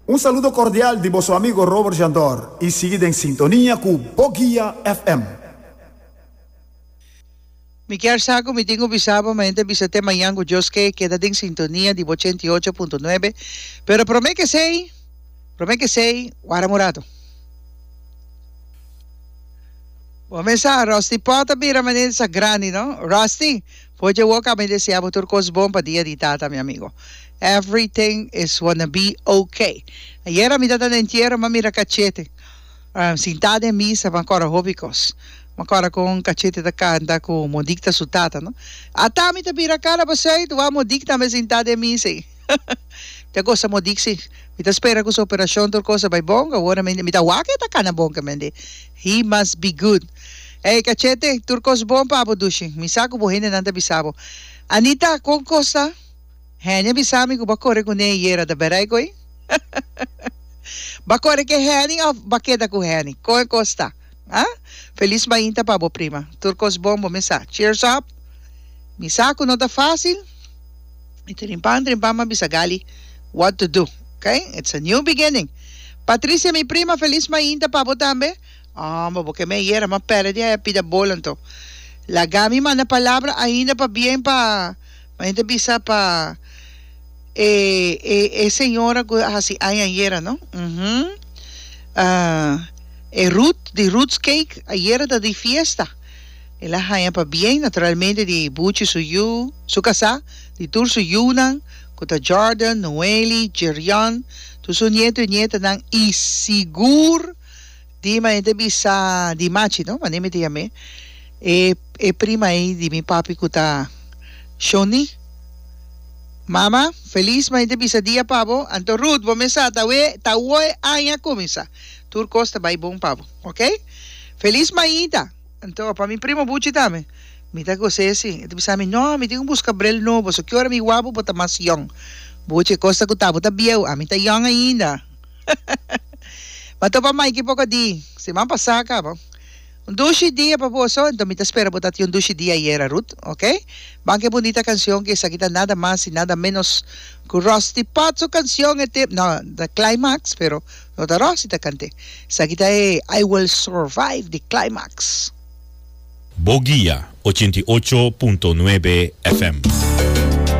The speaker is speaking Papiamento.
Un saludo cordial di boso amigo Robert Jandor y sigui den sintonia cu Bo Guia FM. Mi kier sa cu mi tin cu bisa bo, mehente bisa te mañan cu Dios ke, keda den sintonia di bo ochenta i ocho punto nuebe, pero prome kesey, prome kesey, wara morado. Bo mester a Rusty Potter bira manera di sa grandi no Rusty. Por dje woka mi desea bo tur kos bon pa dia di tata mi amigo. Everything is wanna be ok. Ayera mi tabata na entiero ma mira cachete sinta den misa ma cora hopi cos. Ma cora con cachete ta canta cu mo dicta su tata no. Ata mi ta bira cara pa Zuid, wou mo dicta me sinta den misa ey. Te gosa mo diksi. Mi ta spera ku su operashon tur kos a bai bon, awor mi ta wak e ta kana bon kamendi. He must be good. Ey Cachete, tur kos bon pa bo dushi. Mi sa ku bo hendenan ta bisa bo. Anita, kon kos ta? Heni a bisa mi ku bo a kore ku Ney yera, ta bera e goi? Bo a kore ke Heni of bo a keda ku Heni? Kon e kos ta? Ha? Feliz mainta pa bo prima. Tur cos bon bo me sa. Cheers up! Mi sa cu no ta facil. Mi trimpan trimpan ma bisa Gali what to do. Ok? It's a new beginning. Patricia mi prima feliz mainta pa bo tambe. Aw bo ke me ayera ma pere di aya pida bolan to. Laga mi manda palabra ainda pa bien pa Ma hende bisa pa e e e señora cu a haci aña ayera no? Uhum. Ah, e Ruth di Ruth's Cake ayera ta di fiesta. El a haña pa bien, naturalmente di Buchi su yu, su casá, di tur su yunan cu ta Jordan, Noeli, Jerrion, tur su nieto y nietanan y sigur, Di manera bisa di Machi no, manera mi ta yam'e, e e prima ei di mi papi ku ta Shoni, Mama, Feliz manera bisa dia pa bo, anto Ruth bo mesa ta we ta woe aña kuminsá, tur kos ta bai bon pa bo, ok? Feliz mañita, anto pa mi primo Buchi tambe, mi ta goz'é si, e ta bisa mi, no, mi tin ku buska brel nobo, so ki ora mi wak bo, bo ta mas yòn, Buchi, kosta ku ta bo ta bieu, ami ta yòn ainda. M'a topa Mikey poko di siman pasá kaba. Un dushi dia pa boso, enton mi ta spera bo tabata un dushi dia ayera, Ruth, ok? Ban ku e bunita kanshon ku esaki ta nada mas i nada ménos ku Rusty Potts su kanshon e tempu, no, ta Climax, pero no ta Rusty ta kant'é. Esaki ta e I Will Survive di Climax. Bo guia ochenta i ocho punto nuebe FM.